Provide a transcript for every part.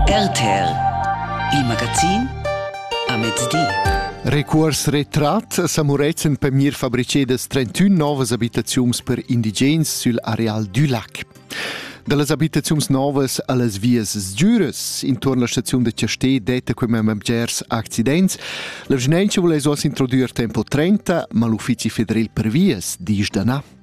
RTL, il magazin a mezdi. Recuors retrat sa Murezzan per mir fabricedas 31 novas abitaziuns per indigens sul areal du lac. Da las abitaziuns novas a las vias sgiuras intorno alla stazione de Chastè detta come members accidents. La vigilanza vuole oss introdurre tempo 30, ma l'uffici federal per vias dice da na.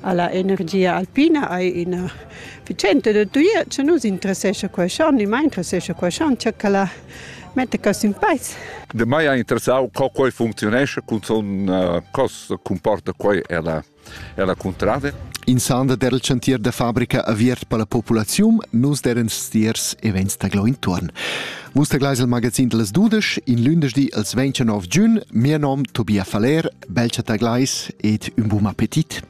alla energia alpina hai ina efficienza da tuia, che nus interessescha quei schon, mai interessescha quei schon, che la mette cos in peis. De mai ha interessau co quei functionesce, cun son uh, cos comporta quei ella ella contrada. In sanda del chantier da fabrica aviert per la populaziun, nus deren stiers e vegns taglò intorn. Vus taglais il magazin de las dudesch, in lündesch di als 29 giun, mia nom Tobia Faller, bel chattaglais ed ün bun appetit.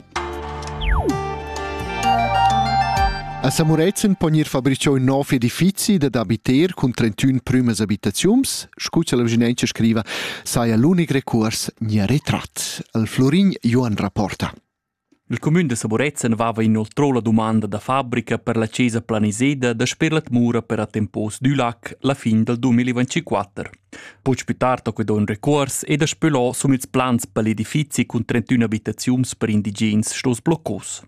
A Samurezen pon ir fabrichò ün nov edifizi dad abiter cun 31 prümas abitaziuns, scu cha la vicinenza scriva, saja l'unic recuors nia retrat. Al Florin Joan rapporta. Il cumün da Saborezza vava inoltrò la dumanda da fabrica per la chesa planiseda dasper la tmura per attempos dü lac la fin dal 2024. Puig pü tard ho que do ün recuors e daspö lò sun ils plans per l'edifizi cun 31 abitaziuns per indigens stos bloccos.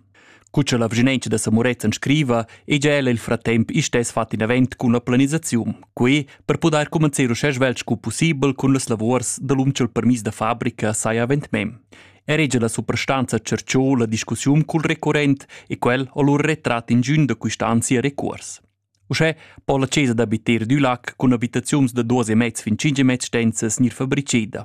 Cu cha la vginentscha da Samorezzan scriva, è già ella il fratemp istess fat in avent cun la planisaziun, qui per pudair commencer uschè svelt scu pussibel cun las lavurs da l'um cha'l permis da fabrica saja avent mem. erige la suprastanza cerciò la discussiun cul recurrent e quel ho lur retrat ingiün da quist'ansia recuors. Uschè po la chesa d'abiter dü lac cun abitaziuns da duos e mezz fin cinque mezz stenzas gnir fabriceda.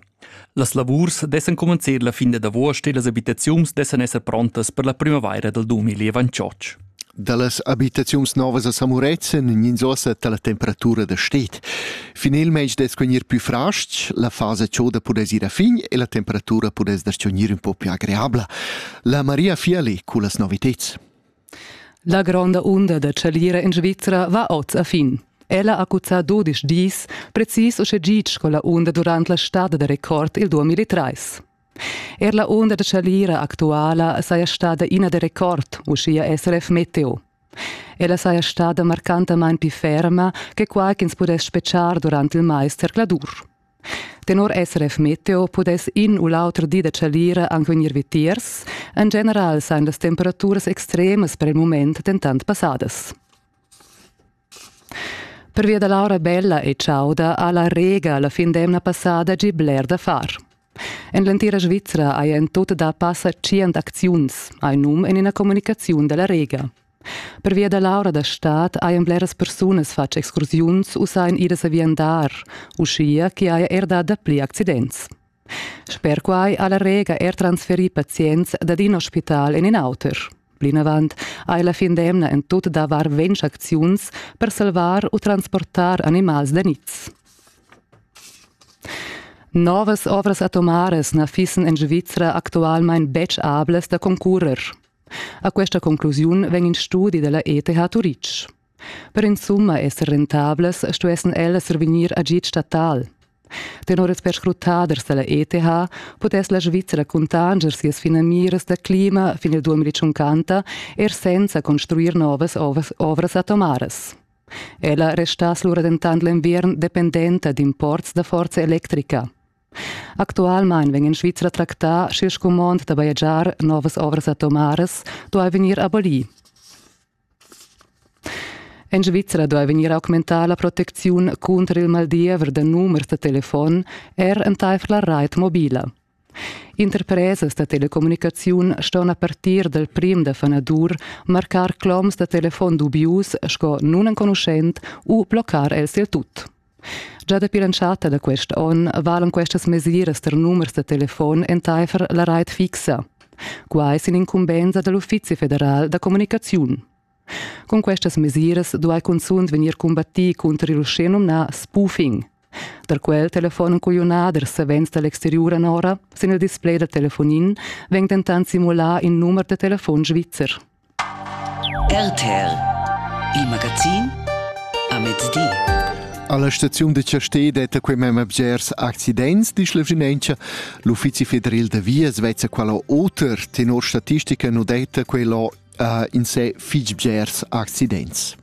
Las lavurs dessan comencer la fin dad avuost e las abitaziuns dessan esser prontas per la primavaira dal 2028. Dallas habitaziuns novas a Samurezz en ins ossa dalla temperatura da stet. Finelmeis dess gnir plü frasts, la fasa choda pudess ir a fin e la temperatura pudess dar gnir un po più agreabla. La Maria Fiali cullas noviteds. La gronda unda da chalira in Svizzera va oz a fin. Ella ha cuzzà 12 dis, precis uschè gitg sco la unda durant la stada da record il 2003. Er la unda da chalira actuala saja stada ina da record, uschia SRF Meteo. Ella saja stada marcantamain pli ferma che quai ch'ins pudess spetgar durant il mais zercladur. Tenor SRF Meteo pudess in u l'auter di da chalira anche vegnir vitiers. En general sain las temperaturas extremas per il mument dentant passadas. Pervia da l'aura bella e chauda ha la Rega la fin d'emna passada gì bler da far. En l'entira Svizra haja en tut da passa tschient acziuns, hai num en ina communicaziun da la Rega. Pervia da l'aura da stad hajan bleras persunas fatg excursiuns u sajan idas a viandar, uschia ch'i haja er dà dapli accidents. Sper quai ha la Rega er transferì pazients dad in ospital en in auter. Plinavant hai la fin d'emna en tut davar ventg acziuns per salvar u transportar animals da niz. Novas ovras atomaras na fissen en Svizra actualmain betg ablas da concurrer. A questa conclusiun vegn in studi della ETH Turitg. Per insumma esser rentablas stuessen ellas survegnir agid statal. Tenor ils perscrutaders dalla ETH pudess la Svizzera cuntanger sias finamiras da clima fin il 2050 er senza construir novas ovras atomaras. Ella restass lura dentant l'enviern dependenta d'imports da forza electrica. Actualmein vegn in Svizra tractà sche scumond da bajegiar novas ovras atomaras duai vegnir abolì. En Svizra duai vegnir augmentada la protecziun cunter il maldiever da numers da telefon er entaifer la rait mobila. Interpresas da telecommunicaziun ston a partir dal prim da fanadur marcar cloms da telefon dubius sco nunenconuschent u bloccar els il tut. Gia dapi l'entschatta da quest onn valan questas mesiras tar numers da telefon entaifer la rait fixa. Quai sin incumbensa da l'Uffizi federal da communicaziun. Cun questas mesiras duai cunzunt vegnir combattì cunter il uschè numnà spoofing. Tar quel telefon en cugliunader savens da l'exteriur anora, sin il display da telefonin, vegn dentant simulà in numer da telefon svizzer. RTL Il magazin a mezdi. Alla staziun de Chastè detta quei mem bgers accidents di Schlevrimentscha. L'uffizi federal de Vias vezza quella oter tenor statistica no detta quella uh, in se fich bgers accidents.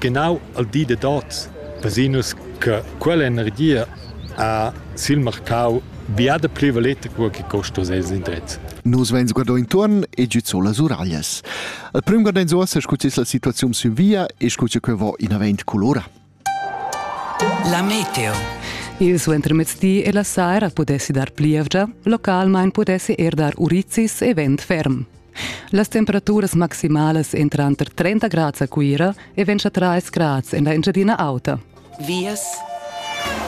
Genau al di dad oz vesinus che quell'energia ha sil marcau biada pli valeta co che costa ses indrez. Nus veins guardau intuorn e giuzzo las uraglias. Al prüm guardein uossa scu es la situaziun sün via e scu che va inavent colora. La meteo Il suentermezdi e la saira pudessi dar plievgia, localmain pudessi er dar urizis e vent ferm. Las temperaturas maximalas èn tranter 30 grads a Cuira e 23 grads en la Engiadina Auta. Vias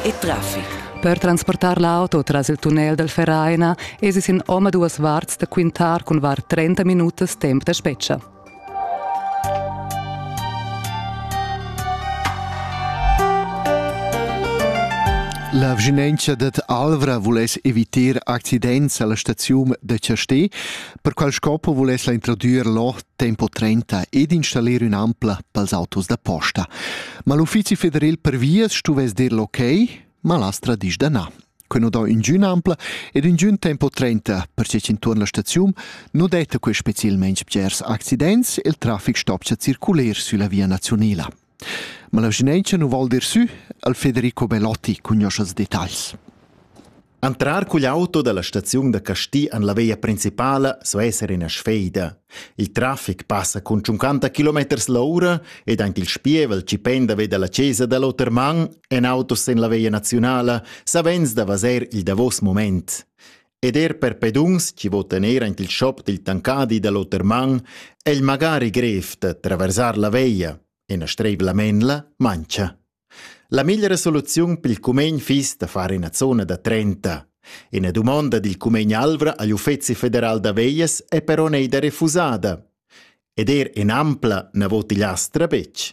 e traffic. Per transportar l'auto tras il tunnel dal Vereina esi sin omaduas varts da quintar cun var 30 minutas temp da spetga. La vschinentscha dad Alvra vuless evitar accidents alla staziun da Chastè. Per qual scopo vuless la introdüer l'o tempo 30 ed installir ün'ampla pels autos da posta. Ma l'Uffizi federal per vias stuvess dir l'ok, ma l'astra disch da na. Que nu do ingün ampla ed ingün tempo 30 per che intuorn la staziun nu detta que specielmente bgers accidents e il trafic stopcha circuler sülla via nazionela. Ma la vischnaunca nu val dir sü, al Federico Belotti cugnoscha ils detagls. Entrar cugl auto dalla staziun da Casti an la veia principala so esser ina sfeida. Il traffic passa cun 50 km l'ora ed anche il spievel ci penda veda la chesa dall'oter man en autos en la veia nazionala savens da vaser il davos moment. Ed er per peduns chi votan eir aint il schop dil tancadi da l'oter man è il magari grev da traversar la veia e na streivla menla mancha. La migliera soluziun pel cumegn fiss da far ina zona da 30. Ina dumonda dil cumegn Alvra agl Uffezi federal da veias è però neida refusada. Ed er in ampla na vot igl astra betg.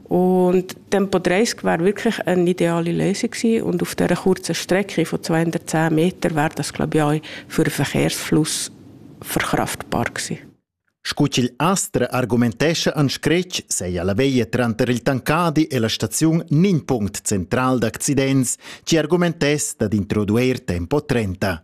Und dann Podresk wäre wirklich eine ideale Lösung gewesen. Und auf dieser kurzen Strecke von 210 Metern wäre das, glaube ich, auch für den Verkehrsfluss verkraftbar gewesen. Scu astra argumentescha an scretg sei alla veia tranter il Tancadi e la staziun nin punct central d'accidents, ci argumentess dad introduer tempo 30.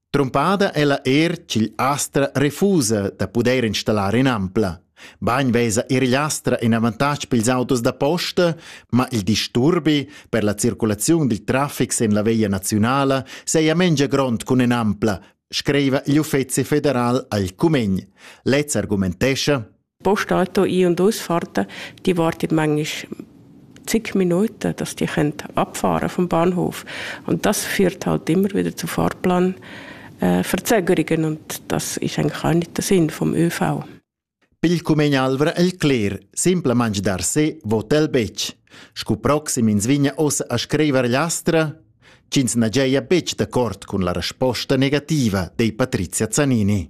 Trumpada ella er ch'igl astra refusa da pudair installar in'ampla. Bain vesa er igl astra in avantatg pils autos da posta, ma il disturbi per la circulaziun dil traffic sin la via naziunala seia mengia grond cun in'ampla, screiva l'Uffeci federal al cumegn. Lez argumentescha Postauto I und Ausfahrten, die wartet manchmal zig Minuten, dass die abfahren vom Bahnhof. Und das führt halt immer wieder zu Fahrplanverzögerungen und das ist eigentlich auch nicht der Sinn vom ÖV. Pilcumegn Alvra el cler, simple mangi dar se, votel bec. Scu proxim ins vigna ossa a scriver lastra, ch'ins na giaja bec de cort cun la resposta negativa, dei Patrizia Zanini.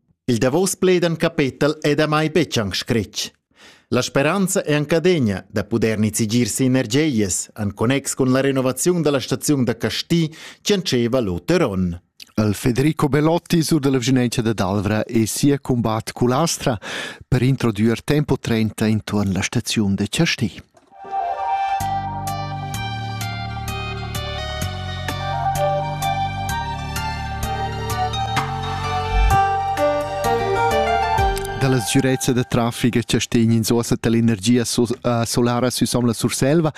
Il davos plaid en capetel è damai betg anc scretg. La speranza è anc adegna da pudair nizigir si energias en connex cun la renovaziun da la staziun da Casti che entscheva l'oter onn. Il Federico Belotti sur della Vigenenza da Dalvra e sia combat Culastra per introdurre tempo 30 intorno alla stazione de Casti. dalla sgürezza da trafic che stegn in sosa dell'energia solara süsom la Surselva.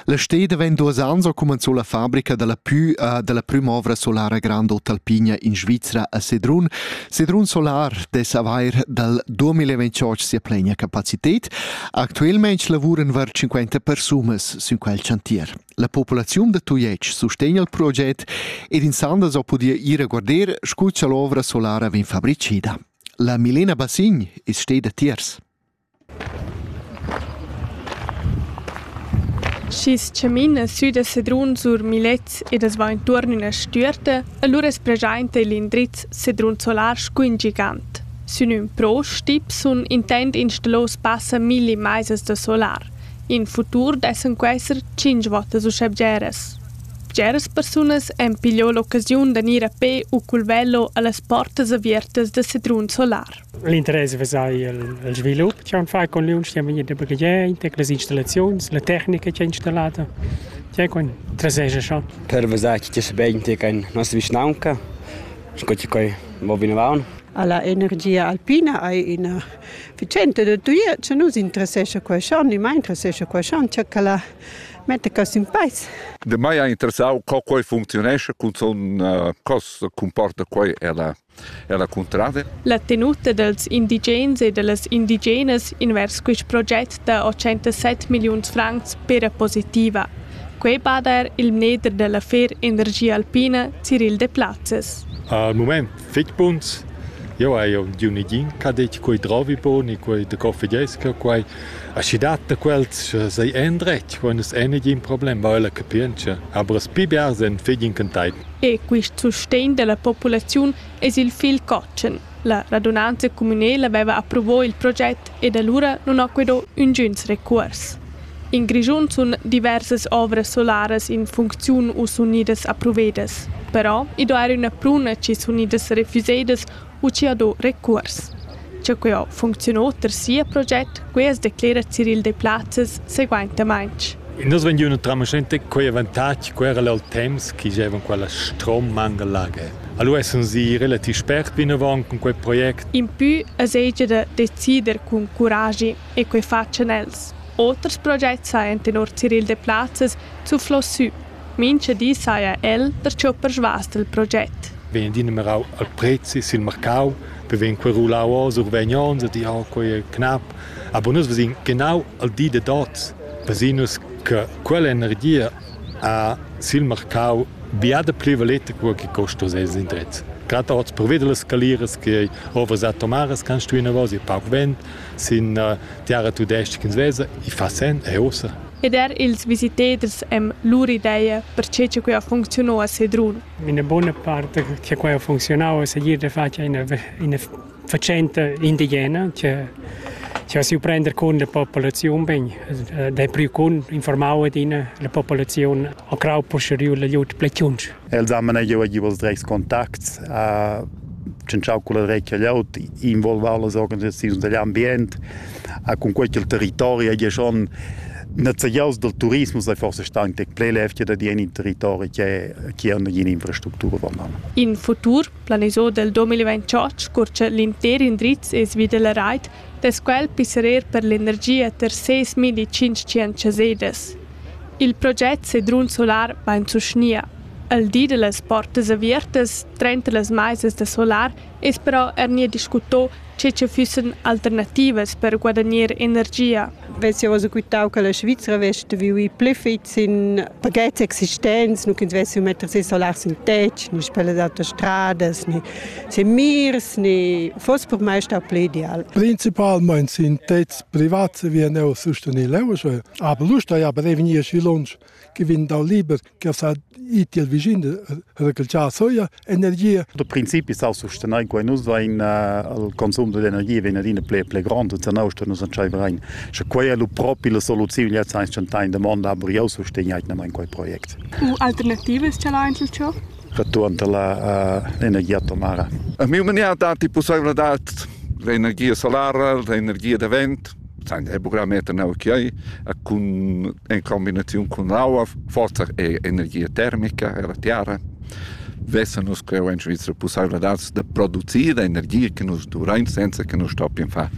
La steda vegn duos ans ho cumanzò la fabrica dalla pü uh, dalla prüma ovra solara Grand Hotel Pigna in Svizra a Sedrun. Sedrun Solar dess avair dal 2028 sia plenia capacität. Actualmein lavuran var 50 persunas sün quel chantier. La populaziun da Tujetsch sustegna il proget ed insanda so podia ir a guarder scu cha l'ovra solara vegn fabricida. La Milena Bassign is steda tiers. Schis chamin a sü da Sedrun sur Milets ed as va intuorn üna stüerta, allura es preschaint il indriz Sedrun Solar scu ün gigant. Sün ün pro stip sun intent installos passa milli maisas da solar. In futur dessan quesser tschinch vottas uschè bgeras. Bgeras persunas han pigliò l'occasiun da gnir a pè u cul velo a las portas aviertas da sedrun solar. L'interess vesai il, il svilup che han fai con l'uniun che vegni da baghegiar inter las installaziuns, la tecnica che è installata. Che con traseja schon. Per vesai che sia ben te can nostra vischnaunca, sco che coi va vinavant. alla energia alpina hai ina vicenda da tuia che nus interessescha quei schon, ni mai interessescha quei schon, che la mette cos in peis. De mai ha interessau co quei functionesce, cun son uh, cos comporta quei ella ella cuntrada. La tenuta dels indigens e dellas indigenas invers quist proget da 807 milliuns francs pera positiva. Quei bada er il mneder della fer energia alpina Cyril de Platzes. Al moment Fich buns. Jeu hai udiu negin che ha detg quei drovi bun e quei de coffigesca, quei. Aschi dat da quels sei endretg, quei nus ei negin problem, va ella capientscha. Aber es pli bia sen fig incanteit. E quist sustegn della populaziun es il fil cotschen. La radunanza communela veva approvò il proget ed allura nun ho quedò üngüns recuors. In Grischun sun diversas ovras solaras in funcziun u sun gnüdas approvedas. Però i do eir üna pruna chi sun gnüdas refüsedas u chi ha do recuors. Cha quai funcziun oter sia proget, quai as declera Ciril Deplazes seguaintamaing. In das vegn üna tramascenta quei avantatg ch'eran al temps chi giovan quella strommanga lager. Allura sun i relativ spert vinavant cun quei project. Impü es hegia da decider cun curagi. e quei fatschan els. Oters projects sajan tenor Cyril Deplazes zuflò sü. Mincha di saja el perciò persvas del proget. Vegn dinumerau al prezi sil marcau, per vegn quei rulau oz survegn ons e di oh, quei è knap. Aber nus vesin genau al di de dots, pesinus che quell'energia a sil marcau biada più valete quel che costa ses indrez. Gerade auch zu Providel skalieren, die over Satomares kannst du in Vosi, Pauch Wind, sin uh, tiara tudestga ch'ins vesa, i fa sen e ussa. Ed er ils visitaders han lur ideia per che quai ha funcziunau a Sedrun. Una buona parte che quai ha funzionau è seguir de fatg una, una faccenda indigena che che si prender con la popolazione ben de più con informare di la popolazione a crau posterior la jut plechunch Els han manegiau giu els dretgs contacts, ha tschintschau culla dretga glieud, involvau las organisaziuns digl ambient, ha cun quei ch'il territori hagi schon nezegiaus dal turismus ei forse stau tec pli levgia da dir in in territori che che ha nagina infrastructura vandam. In futur planisau del 2028 curcia l'intер indriz e svi della rait dess quel pisserer per l'energia ter ses milli tschintg chasedas. Il project Sedrun Solar vain sustgnia. El di da las portas avertas trenta las maisas da solar es però eir gnir discuto che cha füssan alternativas per guadagner energia. vess jau quitau che la Svizra vess vivi pli fitg sin pagets existents, nu ch'ins vessi metter si solar sin tetg, ni per las autostradas, ni sin mirs, ni foss per mai stau pli ideal. Principalmein sin tetgs privats vien eu sustenil eu, aber l'usta ja prevegnir schi lunsch. che vegn dal liber che sa iti al vicin recalciar soia energia. Da principi sa sustenair in quai nus vain al consum d'energia vegn adina ple ple grand e zanau sto nus entscheiver rein. Sche quai è lu propi la soluziun jetzt eins chantain da monda aber jau sustegnait in quai projekt. U alternativas ce la einzel ciò? Return la uh, energia atomara. A mio mania dati possibilità l'energia solara, l'energia da vent. Sein buccameter neu chiai cun in combinaziun cun aua, forsa er energia termica ella tiara. Vessa nus creu en Svizra pussaivladads da producir energia che nus duvrain senza che nus stoppien far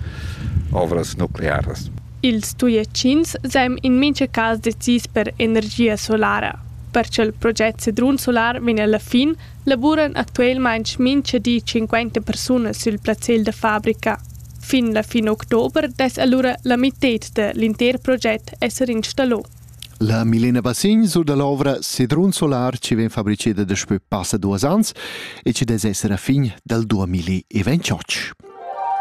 ovras nuclearas. Ils Tujetschins seim in mincha cas decis per energia solara. Per cha'l proget Sedrun Solar vegn alla fin, lavuran actuelmaing mincha di 50 persunas sül plazzel da fabrica. Fin la fin october dess allura la mitted da l'inter project esser installò. La Milena Bassign sur da l'ovra Sedrun Solar ci vegn fabriceda daspö passa duas ans e ci dess esser a fin dal 2028.